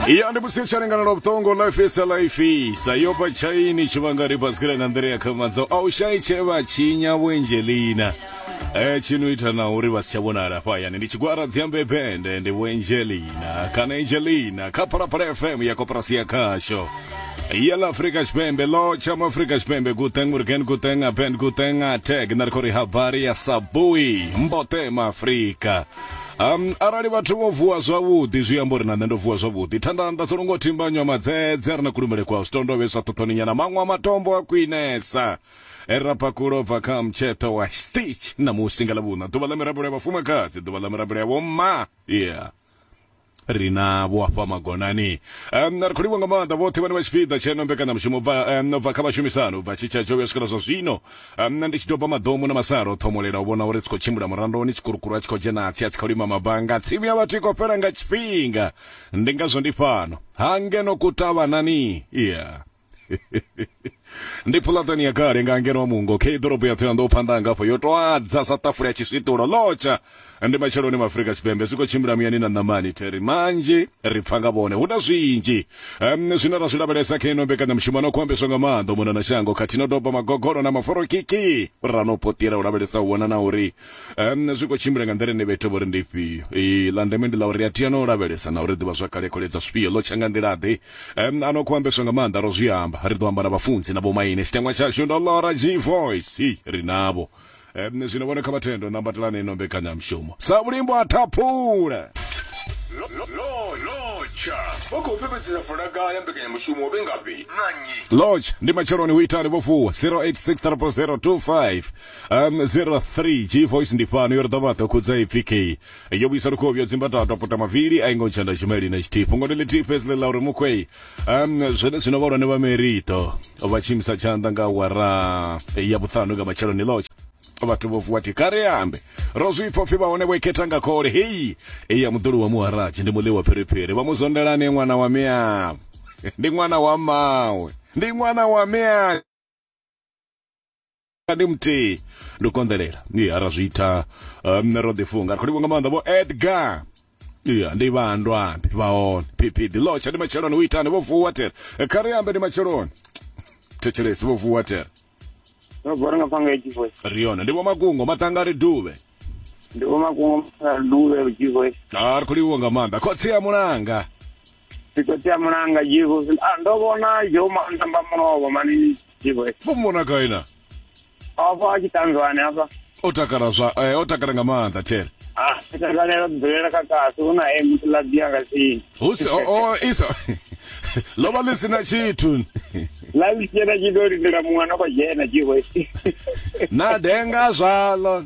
ya ndi musi u tshi lingana na vhuṱongo life is a life sa yo bva tshaini tshi vhanga ri basikela nga nḓila ya khamandzo a u shayi tshe vha tshinya vhuengelina eh tshino ita na uri vha si tsha vhonala hafha hayani ndi tshigwara dziambe bende ndi vhuengelina kana angelina kha phalaphala fm ya koporasi ya khasho ya la afrika tshipembe lo tsha mu afrika tshipembe guteng urgen guteng aben guteng ateg na ri khou ri habari ya sabui mbotema afrika Um, arali vhathu vho vuwa zwavhuḓi zwi amba uri na nṋe ndo vuwa zwavhuḓi thanda nda dzo longo thimba nywa madzedze ri na kulumele kwa zwitondo vheswa ṱhoṱhoni nyana maṅwe a matombo a khwinesa erapakulo e bva kha mtsheṱo wa stitch na musi nga lavhuna ḓuvha ḽa mirabelo ya vhafumakadzi ḓuvha ḽa mirabelo ya vhomma yeah ri na vho afha magonani um, ri khou livha nga maanḓa vhoṱhe vhane vha tshipiḓa tsheno mbekanyamushumo bva um, bva kha vhashumisani bva tshitsha tsho vhuya swikela zwa zwino um, ndi tshi doba maḓomu na masalo o ṱhomolela u vhona uri tsi khou tshimbila murandoni tshikurukuru a tshi khou dzhena atsi a tsi khou lima mabanga tsimu ya vhathu i khou fhela nga tshifhinga ndi ngazwo ndi fhano ha ngeno kutavhanani yeah. ndi phulatani ya kale nga ngeno mungo khe ḓorobo ya thoyando phanḓa hanga afho yo to adza sa ṱafula ya tshiswiṱulo lotsha ndi matsheloni ma afrika tshipembe zwi khou tshimbila muyani na ṋamani theri manzhi ri pfa nga vhone hu na zwinzhi um, zwine ra zwi lavhelesa khe ino mbekanyamushumo no khou ambeswa nga maanḓa mona na shango khathihi no doba magogolo na maforokiki ra no potira u lavhelesa u vhona na uri um zwi khou tshimbila nga nḓila ine vha ita vhori ndi ifhio ee ḽa ndeme ndi ḽa uri a tea no lavhelesa na uri ḓivha zwa kale khole dza zwifhio ḽo tsha nga nḓila ḓe um ano khou ambeswa nga maanḓa ro zwi amba ri ḓo amba na vhafunzi na vhomaine tshiteṅwa tshashu ndo ḽora g voice hi ri navho um zwino vhone kha vhathendo ṋambatelani ino mbekanyamushumo sa vhulimbo a thaphula Lotsha vha khou fhefhedzisa fulaga ya mbekanyamushumo vhe ngafhi na nnyi? Lotsha ndi matsheloni hu itali vho vuwa 086 000 25 Um, 03 g voice ndi fhano yo ri ḓovha ḓo khudza ipfi k yo vhuisa lukovhi yo dzimba tata pota mavili a ingo ntshanda tshimeli na tshithihi fhungo ndi ḽithihi fhedzi ḽi ḽa uri mukhwei um zwene zwino vhahulwane vha merito vha tshimisa tshanḓa nga wara ya vhuṱhanu nga matsheloni ḽotshe vhathu vho vuwa thi kare ambe ro zwi pfha upfi vhahone vho ikhetha nga khole heyi eya muḓulu wa muharaji ndi muḽi wa phiriphiri vha mu zondelane ṅwana wa miavho ndi ṅwana wa mawe ndi ṅwana wa miavho ndi muthihi ndi u konḓelela ya ra zwi ita um, ro ḓifunga ri khou livho nga maanḓa vho edgar ya ndi vhandwa ndi vha hone pipi ḓi lotsha ndi matsheloni u itani vho vuwa tere kha ri ambe ndi matsheloni thetshelesi vho vuwa tere ndo bora nga panga edzi voice ri yone ndi vho makungo maṱanga ri duvhe ndi vho makungo mafhara duvhe edzi voice a ri khou livho nga maanḓa khotsi ya mulanga Ndi khou tea mulanga Jibo. Ah, ndo vhona Joe Manda mba mulovha mani Jibo. Vho mona gai na? Afha a tshi tanzwane afha. O takala zwa eh, o takala nga maanḓa Thele. Ah, takalela dzulela kha kasi hu na emu ḽa dia nga tsini. Hu si o o isa. Lo vha ḽi sina tshithu. La ḽi tshena tshi ḓo lindela muṅwe no khou dzhena Jibo. Na denga zwalo.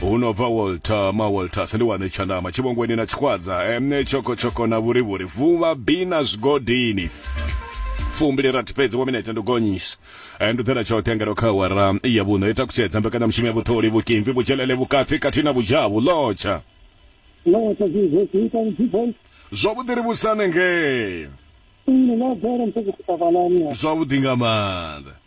hu no bva walter mawalters ndi wane tshandama tshivhongweni na tshikhwadza emne tshokotshoko na vhurivhuri vuvha bi na zwigodini fumbili rathi fhedzi wa minete ndo gonyisa eh, ndo ḓela tshoṱhe ngeno kha awara ya vhuṋo i takutshedza mbekanyamushumo ya vhuṱholi vhukimvi vhudzhelele vhukati khathihi na vhudzhavhu lotsha lotsha zwizo zwi ita vhudzivoi zwavhuḓi ri vhusane ngee nne na bvela msekufutavalani zwavhuḓi nga maanḓa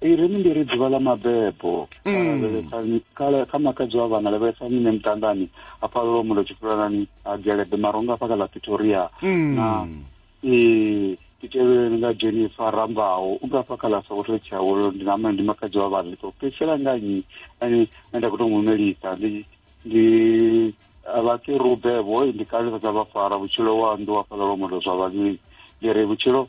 ireni ndi ri dzuvha ḽa mabebo mm. kha makadzi wa vhana lavhelesa nyine muṱandani a phalelwa mulo tshifulanani a gelebe maronga afha kha ḽa pretoria mm. na ee titelweni nga jennifer rambaho u nga fha kha ḽa sokoto tshiawolo ndi nama ndi makadzi wa vhana ndi khou fhedzisela nga nnyi ane nda khou tou mu melisa ndi ndi vhakerube vho ndi kalesa dza vhafara vhutshilo wa nnḓu wa fhaḽa lwa mulo zwa vhavhili ndi ri vhutshilo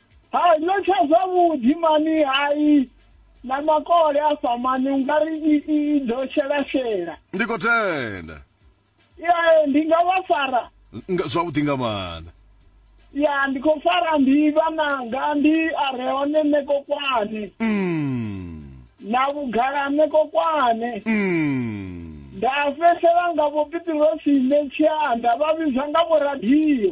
hai no tsha zwavhuḓi mani hai na makole afha mani u nga ri i- i i ḓo shelashela ndi khou tenda ye ndi nga vha fara Nga- zwavhuḓi nga maanḓa ya ndi khou fara ndi vhananga ndi a re hone nṋe kokwane Mm, na vhugala nṋe kokwane mm. nda fhedzisela nga vho pitirosi nṋe tshianda vha vhidzwa nga vho radio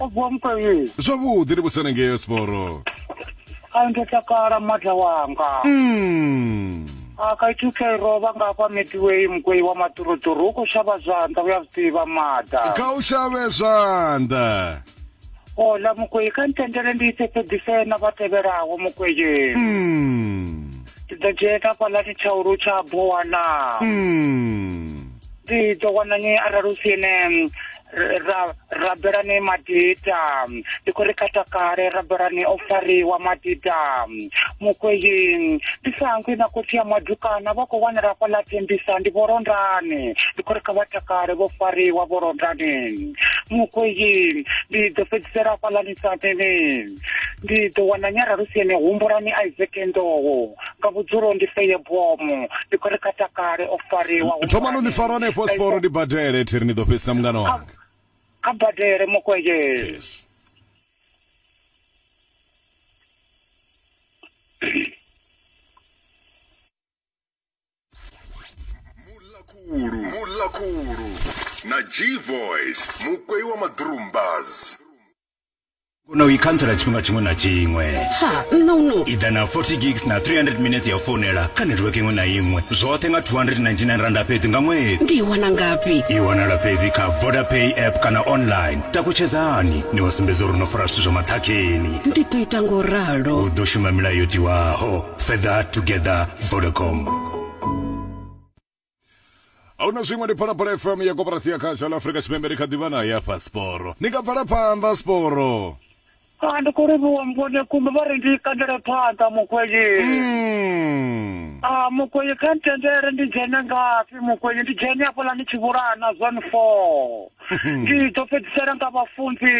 o vuwa mukavhili zwavhuḓi ndi vhusana ngeyo siporo a ndo takala mada wanga mm. a ka ithu ke rova nga hafha midway mugwei wa maṱuruṱuru u khou shavha zwanḓa u ya zwi ḓivha mada kha u shavhe zwanḓa ola mugwei kha ntendele ndi ise fhedzise na vha tevhelaho mugwei mm. ndi ḓo dzhena fhaḽani tshaulu tsha bowana mm. ndi ḓo wana nyi arali u si ene ra rabelani madita ndi khou ri katakale rabelani o fariwa madita mukweyi ndi sangwi na khotsi ya madukana vha khou wanala fhaḽa tembisa ndi vholondani ndi khou ri kha vha takale vho fariwa vholondani mukweyi ndi ḓo fhedzisela fhaḽani saneni ndi ḓo wana nyaralusiene humbulani isaac nḓowo nga vhudzulo ndi feye bomo ndi khou ri kha takale o fariwa thomani ni fara hanefho siporo ni badele thiri ni ḓo fhedzisa mungana wanga kha badele mokweye yes. mulakulu mulakulu na g voice mukwei wa madrumbas kona u i khantsela tshifhinga tshiṅwe na tshiṅwe ha nṋa uno i ḓa na 40 gigs na 300 minutes ya u founela kha netiweke iṅwe na iṅwe zwoṱhe nga 299 randa fhedzi nga ṅwedzi ndi i wana ngafhi i wanala fhedzi kha vodapay app kana online takutshedzani ni wa sumbedza uri no fara zwithu zwa maṱhakheni ndi ḓo ita ngo ralo u ḓo shuma milayo yo tiwaho further together vodacom ahuna zwiṅwe ndi phalaphala fm ya koporasi ya khasha la afurika tshipembe ri kha ḓivha na ya pasiporo ni nga bvela phanḓa siporo a ndi khou livhuwa mvone kumbe vha ri ndi kandele phanḓa mukwenyi Mm. a mukwenyi kha ntendele ndi dzhene ngafhi mukwenyi ndi dzhene afhaḽa ni tshivhulana zone four ndi ḓo fhedzisela nga vhafunzi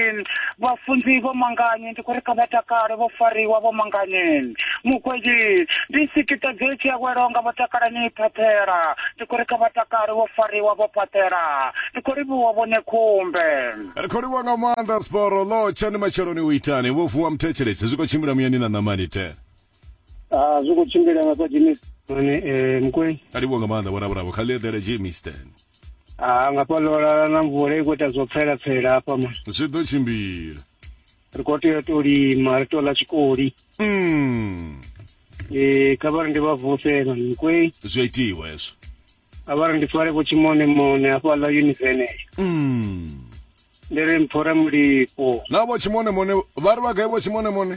vhafunzi vho manganye ndi khou ri kha vha takale vho fariwa vho manganye mugweli ndi sikiṱa dze tshi awelaho nga vho takalani phaṱhela ndi khou ri kha vha takale vho fariwa vho phaṱhela ndi khou livhuwa vhone khumbe ri khou livhuwa nga maanḓa siporo ḽo tshani matsheloni u itani vho vuwa muthetshelesi zwi khou tshimbila muyani na ṋamani te Ah, zwi khou tshimbila nga kwa Jimmy Mane eh Mkwei. Alivho nga maanḓa bona bravo kha ḽi eḓele Jimmy Stan. Ah, nga pa lola na mvula i khou ita zwo pfela pfela hafha man. Zwi ḓo tshimbila. Ri khou tea to lima, ri to ḽa tshikoli. Mm. Eh, kha vhari ndi vha vuse man Mkwei. Zwi a itiwa hezwo. Kha vhari ndi fare vho tshimone mone hafha ḽa univene. Mm. Ndi ri mphora mulipo. Na vho tshimone mone vha ri vha gai vho tshimone mone?